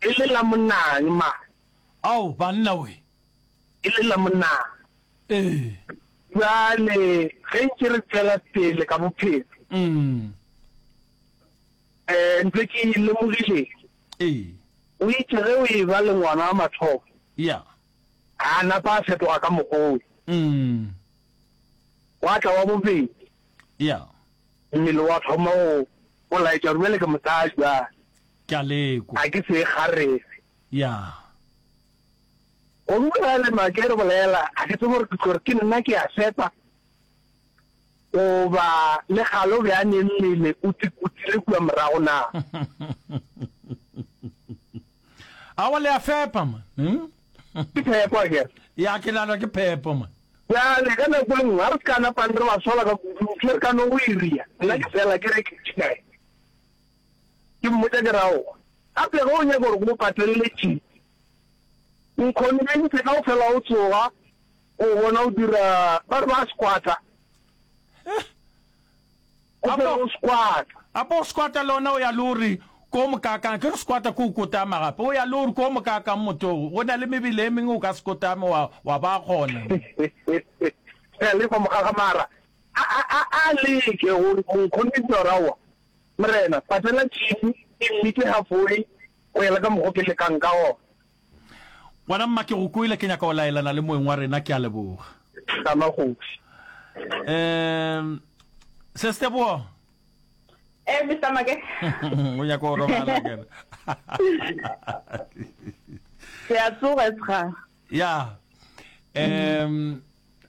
E le la monang ma. Ao banna we. E le la monang. Ee. Bjale ge ntše re tšwela pele ka bophelo. Umm. Eh ntse ke lemogile. Ee. O itše ge o e ba le ngwana wa mathomo. Ya. A napa a fetoga ka mogolo. Umm. Gwa tla wa bobedi. Ya. Mmele wa thoma go go laetša gore bjale ke mosadi bjale. Ke a lekwa. A ke se kgarebe. Ya. Go utlwa le Make re bolela, a ke tsebe gore ke tlo re ke nna ke a sepa goba le kgale o be a ne mmele o tsikutile kua morago na. Awa le a fepa man. Hmm? Ke phepo a ke. Ya ke nana ke phepo man. Bjale ka nako e nngwe a re se ka napang re ba sola ka kudu, ke re ka no o iria. Nna ke fela ke re ke tšikae. Ke mmotša ke ra, O gape ge o nyaka gore ke go patelele tšhipi, nkhonbentšhe ka go fela o tsoga, o bona o dira, ba re ba squatter, o fela o squatter. Gape o squatter le ona o ya le o re ko mokakang, ke re squatter ke o kotama gape, o ya le o re ko mokakang motogo, go na le mebele e mengwe o ka se kotame wa, wa ba gona. Re a lefa mogaga mara a, a, a, a leke go nkhonbentšha gore aowa, Morena, patela tšhipi e mmitše hafoi go ya le ka mokgo ke lekang ka gona. Ngwana mma, ke go kwele. Ke nyaka go laelana le moeng wa rena. Ke a leboga. Hlama kgoši. Um, Ses Teboho. Eh, Mister Make. O nyaka go robala, ke re. Ke a tsoga, Sra. ya um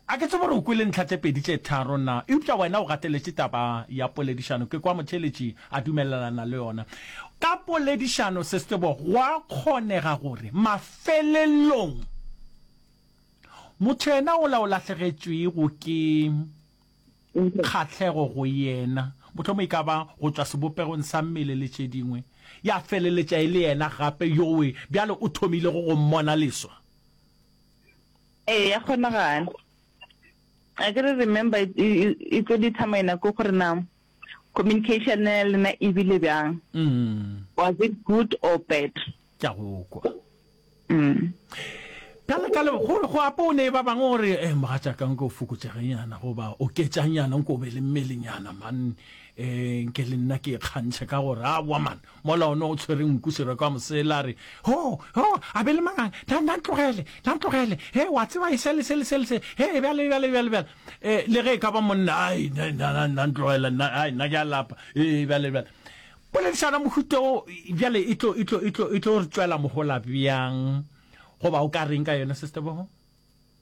a ke tsebo gore o kwele ntlha tse pedi tse tharo na eupša wena o gateletše taba ya poledišano ke kwa motheletši a dumelelana le yona ka poledišano se sebo gwa kgonega gore mafelelong motho yena o la o lahlegetšwego ke kgahlego go yena, mohlomongwe e ka ba go tšwa sebopegong sa mmele le tše dingwe, ya feleletša e le yena gape yowe bjale o thomilego go mmona leswa. Ee, ya kgonagala. Akere remember, e, e, e tlo determiner ke gore na Communication ya lena e bile bjang? Was it good or bad? Ke a go kwa. Ka le ka le go go apo ne ba bang gore eh mogatšaka nko fokotšegenyana go ba oketšanyana nko be le mmelenyana man eh nke le nna ke kgantšhe ka gore a wa man Mola o ne o tshwere nku Sereko a mo seela a re, Ho! Ho! A be le mang a? Na, na ntlogele! Na ntlogele! He, wa tseba e se le se le se le se. He, bjale, bjale, bjale, bjale. E, le ge e ka ba monna, ai, na, na, na, na ntlogele, nna, ai, nna ke a lapa. E, bjale, bjale. Poledišano ya mohuta wo bjale e tlo, e tlo, e tlo, e tlo re tšwela mohola bjang? Goba o ka reng ka yona, Sister Boho?